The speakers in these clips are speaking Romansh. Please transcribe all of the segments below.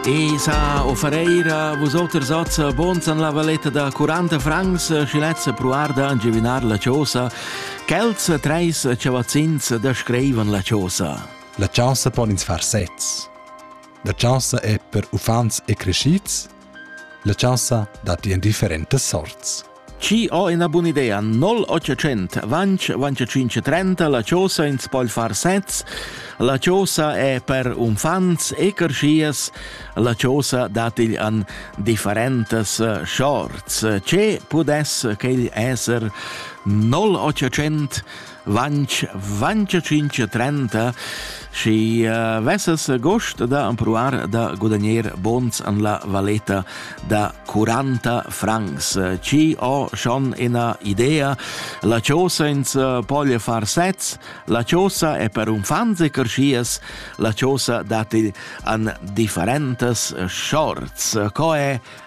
Tesa o Ferreira, vusoters oz bons an la valetta da 40 francs, schi lezza pruarda a giuvinar la chosa, quels treis chavazzins da screivan la chosa. La chaussa pon ins far sezs. La chaussa è per uffants e crescids, la chaussa datti en differentas sorts. Chi ho ina bun'idea 0800 vanch vanch 530 la chosa ins poi far sets la chosa è per unfants e carschias la chosa datigl an differentas eh, shorts che pudess quegl esser 0800 Vanch, vanch cinch trenta, schi uh, vesses gust da ampruar da gudagner bons an la valeta da 40 francs. Ci ho schon ina idea, la chosa ins poglia far sez, la chosa è per un fanziker schias, la chosa dati an differentes shorts. Co è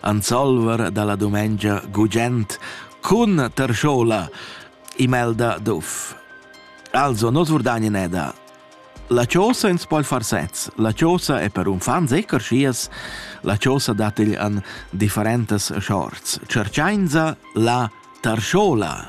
Ansolver dalla dumengia gugent cun tarschola imelda d'uff. Also, nos vurdagni neda. La chosa ins poi far sez. La chosa è per un fan sicher schias. La chosa dat igl an differentas shorts. Cerchainza la tarschola.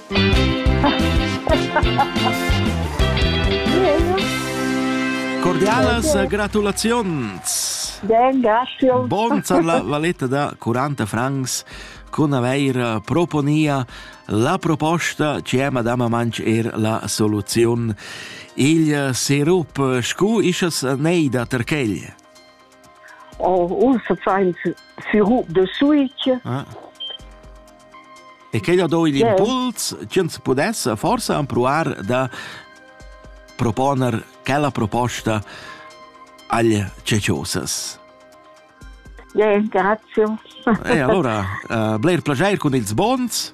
Cordialas gratulaziuns! Ben, grazie. Bon zar la valetta da 40 francs con aveir proponia la proposta ci è Madama Manch er la soluziun. Il serup scu ischas nei da Terchegl? Ussa fains firu de switch. Ah. E che da do igl yeah. impuls, ch'ins pudesse forse empruar da proponer quella proposta agli ceciosas. Yeah, grazie. e allora, uh, bler plagier con ils bons.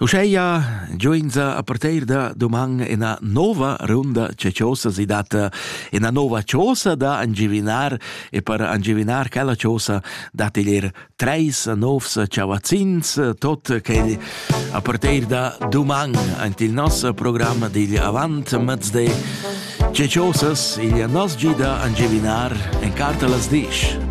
Uscheia gioinza a parteir da doman ena nova runda c'è chosa si data ena nova chosa da angivinar e per angivinar chella chosa dat ilir treis novs chavazzins tot quel a parteir da doman ant il nos programm digl avant mezde c'è chosas igl nos gida angivinar en carta las disch.